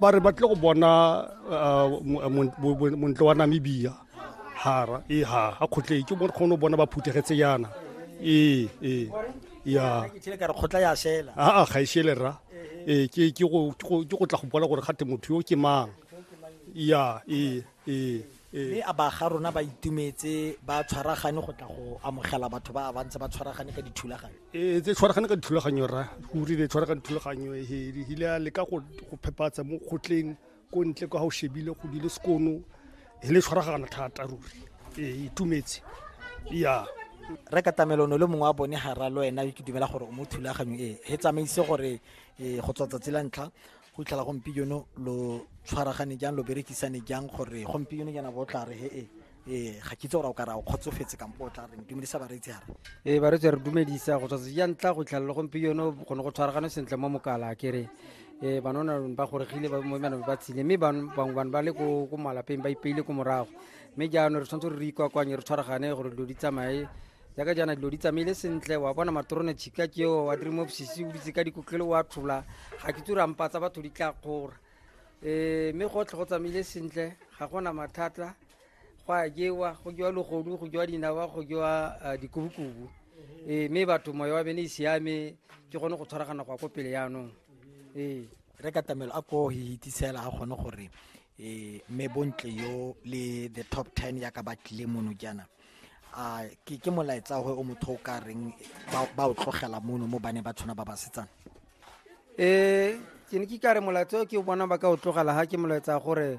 ba re ba tle go bona uh, montle wa namibia hara e ha a kgotleng ke kgone go bona ba phuthegetse yana ee ee ya kgotla ya shela aa ga e shele rra ee ke go tla go bona gore gate motho yo ke mang ya ee ee mme a ba ga rona ba itumetse ba tshwaragane go tla go amogela batho ba ba ntse ba tshwaragane ka dithulaganyo ee tse tshwaragane ka dithulaganyo ra go rile tshwaragane dithulaganyo hile a leka go phepatsa mo kgotleng ko ntle kwa ga o shebile go dile sekono e le tshwaragana thata ruri ee itumetse ya re ka tamelono le mongwe wa bone ga ra le wena ke dumela gore o mo thulaganyo e he tsamaise gore go tswa tsatsi la ntlha go itlhela gompieno lo tshwaragane jang lo berekisane jang gore gompieno jana bo tla re he e ee ga kitse gore o ka ra o kgotsofetse kampo o tla reng dumedisa bareetsi gara ee bareetsi re dumedisa go tswatse ja ntla go itlhela le gompieno gone go tshwaragane sentle mo mokala kere um banona ba goregile bana ba tshile mme bangwe bane ba le ko malapeng ba ipeile ko morago mme jaanong re tshwanetse re re ikwakwanye re tshwaragane gore dilo di tsamaye jaaka jaana dilo di tsamaile sentle wa bona matrone chika ke o wa dream of sisi o ditse ka dikotlelo wa tlhola ga ke tura mpa tsa batho di tla kgora eh mme go tlhe go tsamaile sentle ga gona mathata go a jewa go jewa logodu go jewa dinawa go jewa ah, dikubukubu eh mme batho moya wa bene e siame ke gone go tshwaragana go ya ko pele yaanong ee re katamelo a ko hitisela a kgone gore um mme bontle yo le the top ten yaka ba tlile mono jaana a ke ke molaetsa gore o motho o ka reng ba o tlogela mono mo bane ba tshwana ba ba setsana um ke ne ke kare molaetsa o ke o bona ba ka o tlogela ga ke molaetsa gore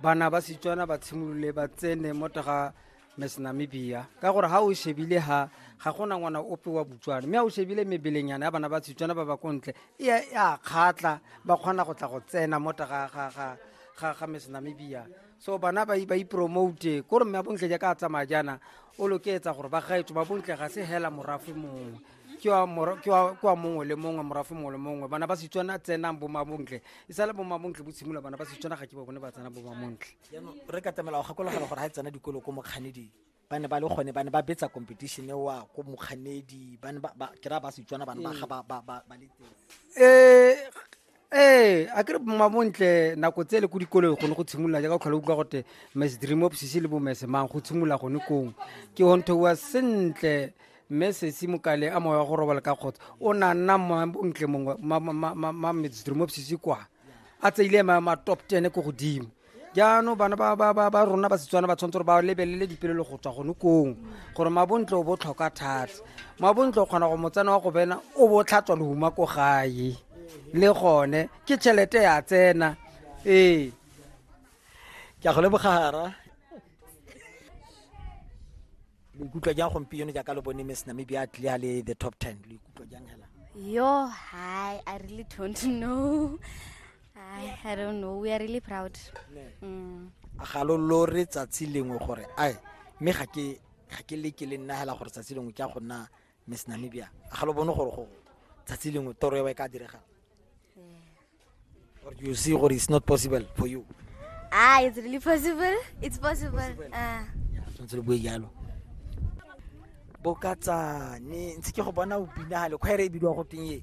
bana ba setswana ba tshimolole ba tsene mo taga miss namibia ka gore ga o shebile ga ga gona ngwana ope wa botswana mme ga o shebile mebelenyana ya bana ba setswana ba ba ko ntle e a kgatlha ba kgona go tla go tsena mo taga ga miss namibia so bana ba ba ipromote ko re mme bontle jaaka a tsamaya jaana o loketsa gore ba gaetso ba bontle ga se hela morafe mongwe ke wa mora- ke wa- ke wa mongwe le mongwe morafe mongwe le mongwe bana ba setswana tsenang bomabontle e sale bomabontle bo tshimolola bana ba setswana ga ke ba bone ba tsena bomabontle jaanong re ka tlamela go gakologelwa gore ga e tsena dikolo ko mokganeding ba ne ba le gone ba ne ba betsa competition e wa ko mokganedi ba ne ba ke ra ba setswana ba ne ba ga ba ba ba ba le teng eh ee a kere mabontle nako tse le ko dikolong gone go tshimolola jaaka tlhola utlwa gote mes dream of sisi le bo mese mang go tshimolola gone kong ke honto wa sentle mme sesi mokale a moya wa go robala ka kgotsa o na nna mabontle mongwe ma mes dream of sisi kwa a tseile ma top ten ko godimo jaanong bana ba rona ba setswana ba tshwanetse gore ba lebelele dipelelo go tswa gone kong gore mabontle o bo tlhoka thata mabontle o kgona go motsena wa go bena o bo tlhatswa lehuma ko gae le gone ke tšhelete ya tsena ee ke a go lebogara lo ikutlwa jang gompieno jaaka lo bone miss namibia a tlile a le the top ten lo ikutlwa jang hela yo hi i really don't know I, I don't know. We are really proud. Mm. Ga lo lore tsatsi lengwe gore ai me ga ke ga ke le ke le nna hela gore tsatsi lengwe ke a go nna Miss Namibia. Ga lo bone gore go tsatsi lengwe toro e ka direga. Or you see gore it's not possible for you. Ah, it's really possible. It's possible. possible. Ah. Yeah, tshwanetse le bue jalo. Bokatsane, ntse ke go bona o bina hale, khwaere e bidiwa go teng e.